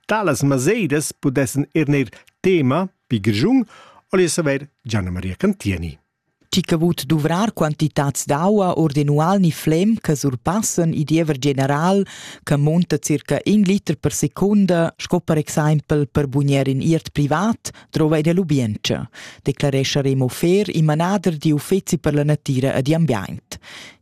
Talas masedas pudessan er neir tema pi grischun o le saver Gianna Maria Cantieni. Chi che vut duvrar quantitats d'aua ordinual ni flem che surpassen il diever general che monta circa in liter per secunda, sco per exempel per bugner in iert privat, trova in l'ubienza, declaresce Remo Fer, il manader di uffeci per la natira e di ambiente.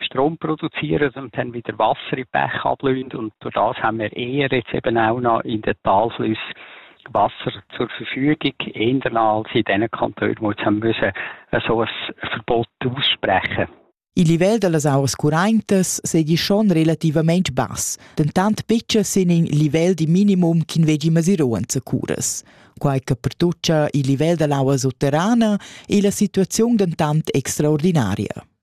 Strom produzieren und haben wieder Wasser in Bächen ablöhnt und durch das haben wir eher jetzt eben auch noch in den Talflüssen Wasser zur Verfügung, eher als in diesen Kantonen, wo jetzt haben müssen so ein Verbot aussprechen Il livello delle auas currentas seigi schon relativament bass, dentant betga sin in livel di minimum ch'in veggi mesiruan zacuras. Quai che pertuccia il livel dell'aua sotterrana è la situaziun dentant extraordinaria.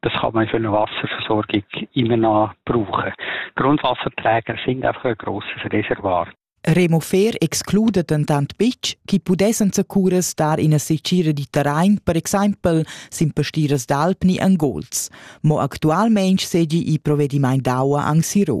das kann man für eine Wasserversorgung immer noch brauchen. Grundwasserträger sind einfach ein grosses Reservoir. Remo Fair exclude dentant betg, chi pudessan zacuras dar ina secira di terrain, per exempel sin pastiras d'alpni en gols. Mo actualmein segi i provedimaint d'aua anc siro.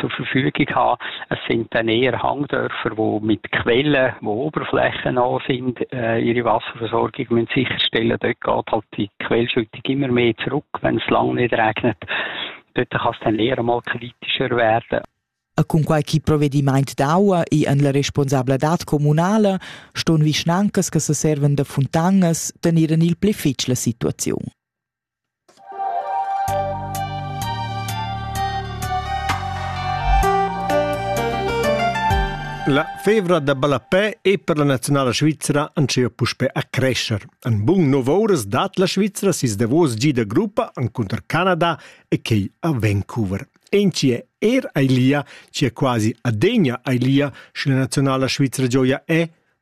zur Verfügung haben. Es sind dann eher Hangdörfer, die mit Quellen, wo Oberflächen noch sind, äh, ihre Wasserversorgung müssen sicherstellen. Dort geht halt die Quellschüttung immer mehr zurück, wenn es lange nicht regnet. Dort kann es dann eher mal kritischer werden. Cun quai chi provedimaint d'aua e en la responsabladad communala ston vischnancas che se servan da funtanas tenir en il pli fitg la situaziun. La fevra da ballapè è per la nazionala svizra ancea puspè a crescer. En bun nov ouras dat la Svizra sis davos gi da gruppa encunter Canada e quei a Vancouver. Enci è er ailia, ci è quasi adegna ailia, sche la nazionala svizra gioia è,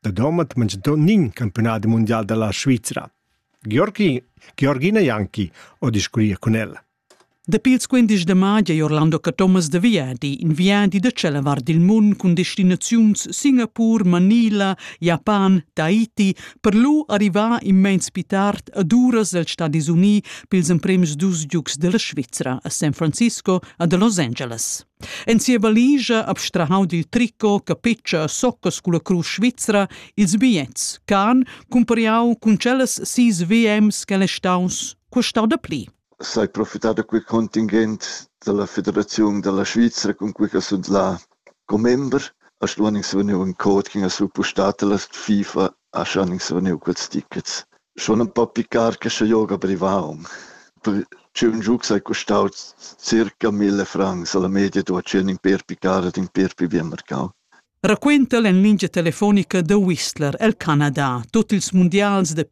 da domat manchentont nin campiunadi mundial dalla Svizra. Georgi, Georgina Janki ho discuria cun el. Dapi ils 15 de mai è Orlando Thomas de viadi, in viadi da cella var dil mund cun destinaziuns Singapur, Manila, Japan, Tahiti, per lu arrivar immens pi tard ad uras dels Stadis Uni pils emprems dus giugs della Svizra a San Francisco a de Los Angeles. En sia valigia abstrahau dil tricot, capetscha e soccas culla crusch svizra ils bigliets ch'han cumpariau cun tschellas sis VMs ch'el è staus custau da pli. Sai profitar da quei contingent dalla Federaziun dalla Svizra cun quei che sunt la commember. A stuan ins vegnir in code che ha suppostato la FIFA Ascha han ins vegniu quels tickets. Schon empau picar che sche joga privau. Per tschun giugs ei custau circa mille francs alla media da tschien in per picar ed in per pi bien marcau. Raquenta en lingia telefonica The Whistler el Canada. Tut ils mundials de